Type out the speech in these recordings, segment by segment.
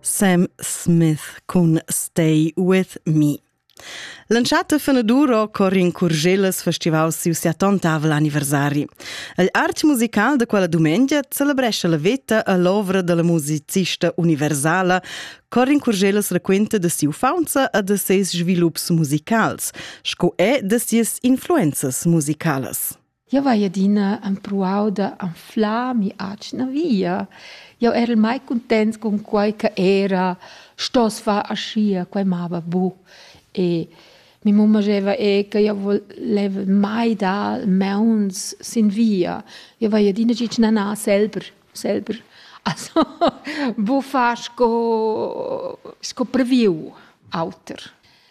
Sam Smith cun Stay With Me. L'entschatta fenaduro cor in Curgelas festival siu siatontavel anniversari. Il art musical de quella dumengia celebresce la veta e l'ovra della musicista universala cor in Curgelas raquenta de siu faunza e de ses svilups musicals, sco è de sias influenzas musicalas. Jau hai adina empruau da anflar mi'atgna via. Jau erel mai cuntents cun quai che era stoss far aschia, quai mava buc. E mi mumma scheva er che jau voleva mai dar mauns sin via. Jau hai adina gitg na, na, selber, selber. Also buc far sco, sco previu auter.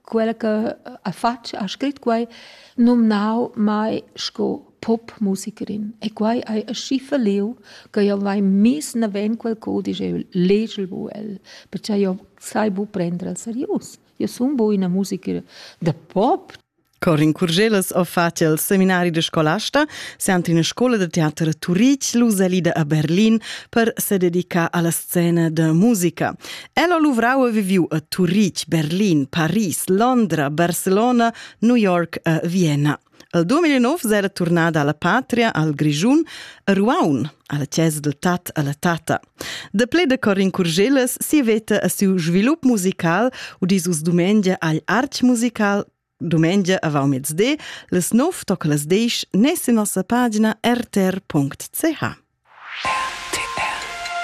Quella che ha fatg, ha scrit quai, numnau mai sco popmusicirin. E quai hai aschi falliu che jeu vai miss naven quel cudisch e legel bu el, pertgei jeu sai bu prender el serius. Jeu sun bu ina musicra da pop. Corin Curgelas ha fatg il seminari de scolasta, siant in scola de teater a Turitg, Lusalida a Berlin, per se dedicar alla scena de musica. El ha luvrau e viviu a Turitg, Berlin, Paris, Londra, Barcelona, New York e Vienna. El 2009 era turnada alla patria, al Grigiun, a Ruaun, alla chiesa del tat alla tata. De ple de Corin Curgeles si veta a siu svilup musical u di sus dumengia agl arch musical Dumengia avant mezde, les nov toc las desch nes in nossa pagina rtr.ch.